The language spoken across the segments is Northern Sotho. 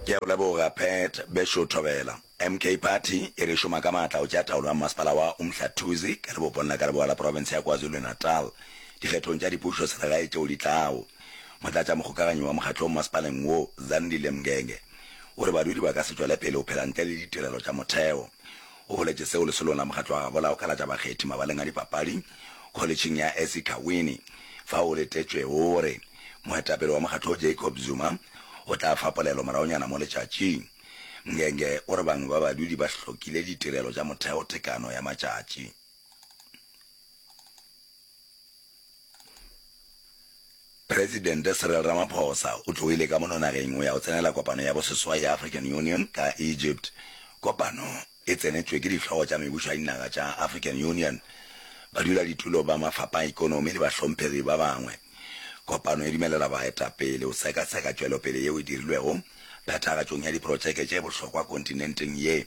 Ke a go leboga Pat Bešo Thobela. MK Party e re šoma ka maatla go tšea taolo ya mmasepala wa Umhlathuze ka lebopong la ka leboa la profense ya KwaZulu-Natal dikgethong tša dipušo selegae tšeo di tlago. Motlatšamokgokaganyi wa mokgatlong masepaleng wo, Zandile Mngenge, o re badudi ba ka se tšwele pele go phela ntle le ditirelo tša motheo. O boletše seo lesolong la mokgatlo wa gabo la go kalatša bakgethi mabaleng a dipapadi kholetšheng ya Ezikhawini fao o letetšwego o re moetapele wa mokgatlo wo Jacob Zuma o tla fa polelo moragonyana mo letšatšing. Mngenge o re bangwe ba badudi ba hlokile ditirelo tša motheo tekano ya matšatši. Presidente Cyril Ramaphosa o tloile ka mono nageng go ya go tsenela kopano ya boseswai ya African Union ka Egypt. Kopano e tsenetšwe ke dihlogo tša mebušo ya dinaga tša African Union, baduladitulo ba mafapha a ekonomi le bahlomphegi ba bangwe. Kopano e dumelela baetapele go seka-seka tšwelopele yeo e dirilwego phethagatšong ya diprotšeke tše bohlokwa kontinenteng ye.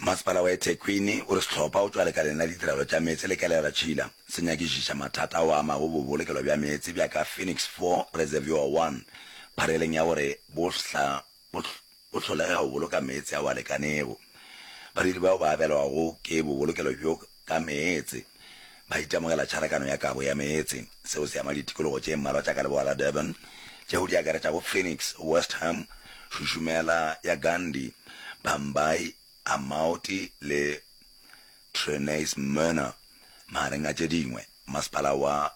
Masepala wa eThekwini o re sehlopha o tšwa lekaleng la ditirelo tša meetse le Kelera Tšhila se nyakišiša mathata ao a amago bobolokelo bja meetse bja ka Phoenix Four Reservoir One phareleng ya gore bo hla bo bo hlolega go boloka meetse ao a lekanego. Badiri bao ba abelwago ke bobolokelo bjo ka meetse, ba itemogela tšharakano ya kabo ya meetse. Seo se ama ditikologo tše mmalwa tša ka leboa la Durban, tšeo di akaretšago Phoenix, West Ham, Shushumela ya Gandhi, Bhambayi, Amaoti le Trenais Myrna, magareng a tše dingwe. Masepala wa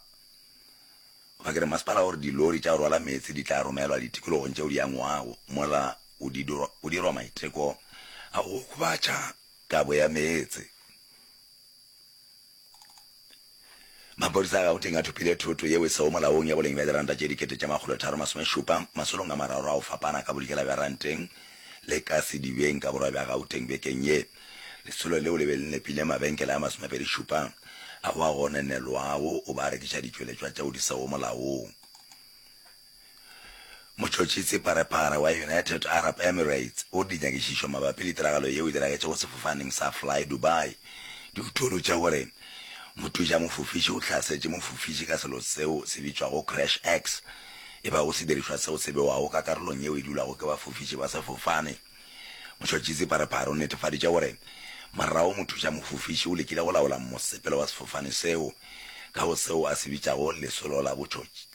goba ke re masepala o re dilori tša go rwala meetse di tla romelwa ditikologong tšeo di angwago, mola go dirwa maiteko a go okobatša Kabo ya meetse. Maphodisa a Gauteng a thopile thoto yeo e sego molaong ya boleng bja diranta tše dikete tše makgolo tharo masomešupa masolong a mararo a go fapana ka bodikela bja ranteng le ka sedibeng ka borwa bja Gauteng bekeng ye. Lesolo leo le be le nepile mabenkele a masomepedišupa a go a go nenelwago go ba rekiša ditšweletšwa tšeo di sego molaong. Motšhotšhisi pharephare wa United Arab Emirates o di nyakišišo mabapi le tiragalo yeo e diragetšego sefofaneng sa Fly Dubai di utolotše gore mothuša mofofiši o hlasetše mofofiši ka selo seo se bitšwago crash X e bago sedirišwa seo se bewago ka karolong yeo e dulago ke bafofiši ba sefofane. Motšhotšhisi pharephare o netefaditše gore morago mothuša mofofiši o lekile go laola mosepelo wa sefofane seo ka go seo a se bitšago lesolo la botšhotšhisi.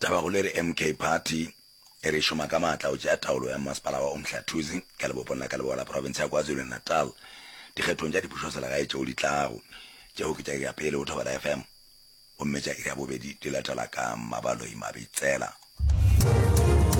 Taba go le re MK Party e re e šoma ka maatla go tšea taolo ya mmasepala wa Umhlathuze ka lebopong la ka leboa la profense ya KwaZulu-Natal dikgethong tša dipušoselegae tšeo di tlago. Tšeo ke tša iri ya pele go Thobela FM gomme tša iri ya bobedi di latela ka Mmabaloi Mabitsela.